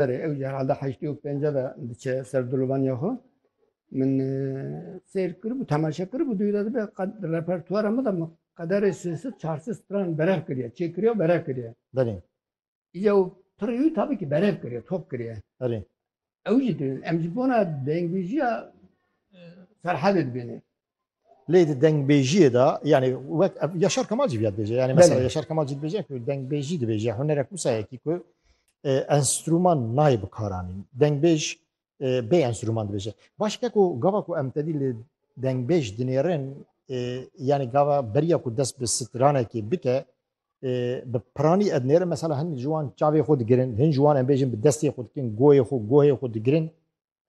Serê ew jî herhalde heştê û pênce de diçe ser dolobaniya xwe. Min seyr kiribû, temaşe kiribû duyî de dibe qed di repertuara min de min qederê sê sid çar sid stran berev kiriye, çêkiriye û berev kiriye. Belê. Îca û pirrî wî tabî ki berev kiriye, top kiriye. Belê. Ew jî dibînin. Em ji bona dengvîjiya Ferhadê dibînê. Lê di dengbêjiyê de yanî wek Yaşar Kemal jî viyad bêje yanî mesela Yaşar Kemal jî dibêje ku dengbêjî dibêje hunerek wisa yekî ku e, enstrûman nayê bikaranîn. Dengbêj e, bê enstrûman dibêje. Baş ke ku gava ku em tedî li dengbêj dinêrin e, yanî gava beriya ku dest bi stranekê bike bi piranî ednêrin mesela hin ji wan çavê xwe digirin, hin ji wan em bêjin bi destê xwe dikin, goyê xwe, gohê xwe digirin.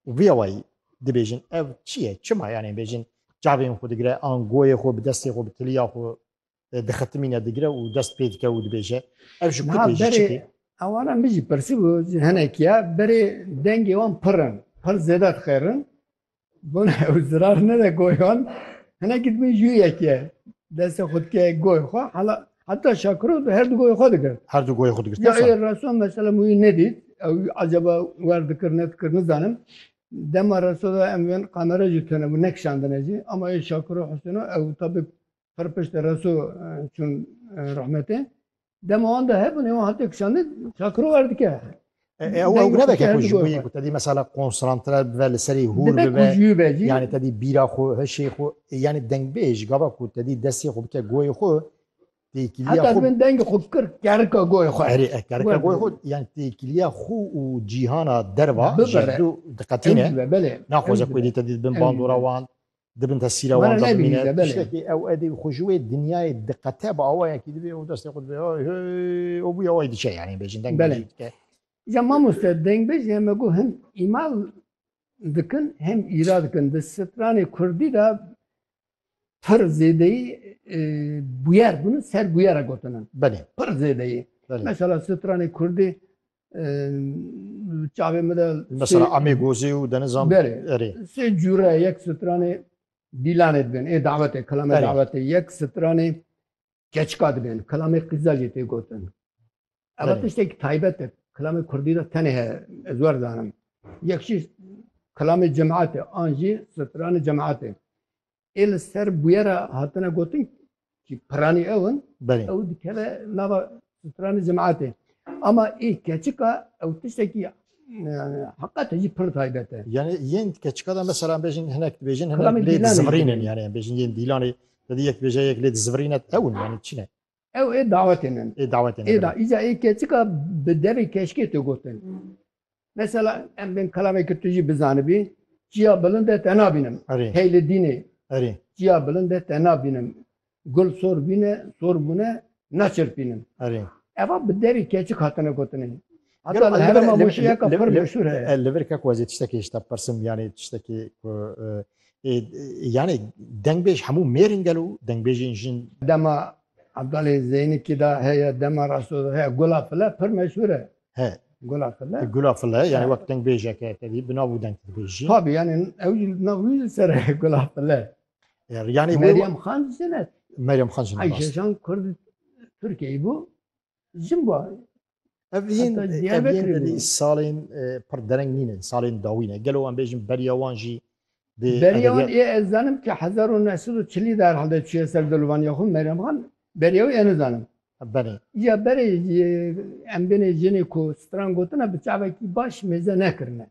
Û vê awayî dibêjin ev çi ye? Çima yanê bêjin çavên xwe digire an goyê xwe bi destê xwe bi tiliya xwe e, dixitimîne digire û dest pê dike û dibêje ev ji ku tê ji çikê? Ewana min jî pirsîbû ji hinekiya berê dengê wan pir in, pir zêde dixêrin. Bona ew zirar nede goyan. Hinekî dibin jûyek ye. Destê xwe dike goyê xwe hala Heta Şakiro di her du goyê xwe digir. Her du goyê xwe digir. Ya ê reso mesela min wî nedît. Ew acaba wer dikir nedikir nizanim. Dema reso de em bên kamera jî tune bû nekişandine jî. Ama ê Şakiro Husêno ew tabî pir piştî reso çûn rehmetê. Dema wan de hebûn ê wan hate kişandin Şakiro wer dike. Ew ew ne veke ku ji bo yê ku te dî mesela konsantre bibe li serî hûr bibe yanî te dî bîra xwe hişê xwe yanî dengbêj gava ku te dî destê xwe bike goyê xwe têkiliya xwe min dengê xwe fikir kerika goyê xwe erê kerika goyê xwe yanî têkiliya xwe û cîhana derva ji dû diqetîne naxwaze ku dî te dî bin bandora wan dibin tesîra wan de bimîne tiştekî ew edî xwe ji wê dinyayê diqete bi awayekî dibê û destê xwe dibê û bûye awayî diçe yanî bêjin deng belê dike Ya mamoste dengbêj ya me got hem îmal dikin hem îra dikin di stranê kurdî de pir zêdeyî e, bûyer bûn ser bûyera gotinin. Belê. Pir zêdeyî. Mesela stranê kurdî çavê min de mesela Amê Gozê û Denizan erê. Sê cûre yek stranê dîlanê dibin. Ê davetê kilamê davetê yek stranê keçika dibin. Kilamê qîza jî tê gotin. Ev tiştekî taybet e. Kilamê Kurdî de tenê heye. Ez wer zanim. Yek jî kilamê cemaatê an jî stranê cemaatê. ê li ser bûyera hatine gotin ki piranî ew in Belê. ew dikeve nava stranê cemaetê. Ama ê keçika ew tiştekî e, heqete jî pir taybet e. Yani yên keçika da mesela em bêjin hinek dibêjin hinek Kilamê lê Dîlanê dizivirînin dibêjin. yani em bêjin yên dîlanê te dî yek bêje yek lê dizivirîne ew in yani çi ne? Ew ê dawetê min. Ê dawetê min. Ê da îca ê keçika bi devê keşkê tu gotin. Mesela em bên kelameke tu jî bizanibî, Çiya bilind e te nabînim. Erê. Hey li dînê. Erê. Çiya bilind e te nabînim. Gul sor bîne, sor bûne, naçirpînim. Erê. Eva bi devê keçik hatine gotinê. Heta li herêma Mûşiyeka pir meşhûr heye. Li vir ke ku ez ê tiştekê ji te bipirsim yanê tiştekê ku yanê dengbêj hemû mêrin gel û dengbêjên jin. Dema Ebdalê Zeynikî de heye, dema Rasto de heye. Gula File pir meşhûr e. He. Gula File. Gula File yanê wek dengbêjek e tevî bi nav û deng dibêjî. Tabî yanê ew jî li nav wî jî ser e Gula File. Yanê Meryem Xan jî jin e. Meryem Xan jin e rast. Ayşejan Kurd Tirkiyeyî bû. Jim bu. Ev yên Diyarbekirî salên pir dereng nîne, salên dawî ne. Gelo em bêjin beriya wan jî dê Beriya wan ê ez zanim ki hezar û neh sed û çilî de herhalde çûye ser dolvaniya xwe Meryem Xan beriya wî êne zanim. Belê. Îya berê em bêne jinê ku stran gotine bi çavekî baş mêze nekirine.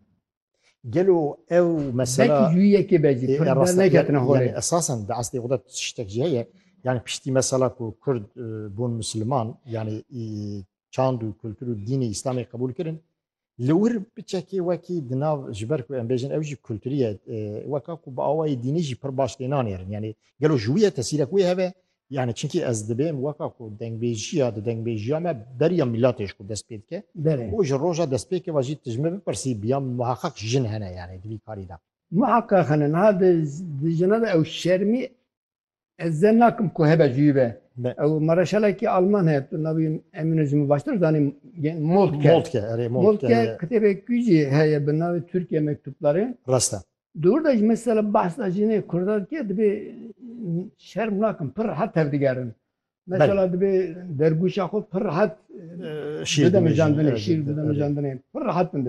Gelo ew mesela Belkî cûyî yekê be jî kurd derneketine holê. Yani esasen di eslê xwe de tiştek jî heye. Yani piştî mesela ku kurd bûn misliman yani çand û kultur û dînê îslamê qebûl kirin li wir biçekê wekî di nav ji ber ku em bêjin ew jî kulturî ye weka ku bi awayê dînî jî pir baş tê nanêrin. Yani gelo ji wî ye tesîrek wê hebe Yani çünkü ez dibêm weka ku dengbêjiya di dengbêjiya me beriya milatê ji xwe dest pê dike û ji roja destpêkê ve jî tu ji min bipirsî biya muheqeq jin hene yani di vî karî de. Muheqeq hene niha di di jinan de ew şermî ez zen nakim ku hebe ji wî ve. Ew mareşalekî alman heye tu navê wî Emîno ji min baştir zanî Moltke. Moltke erê Moltke. Moltke kitêbekî jî heye bi navê Türkiye Mektupları. Rast e. Di wir de jî mesela behsa jinê kurda dike dibê şerm nakin pir rehet tevdigerin. Mesela dibê dergûşa xwe pir rehet bidemijandinê, şîr bidemijandinê pir rehet bin dibê.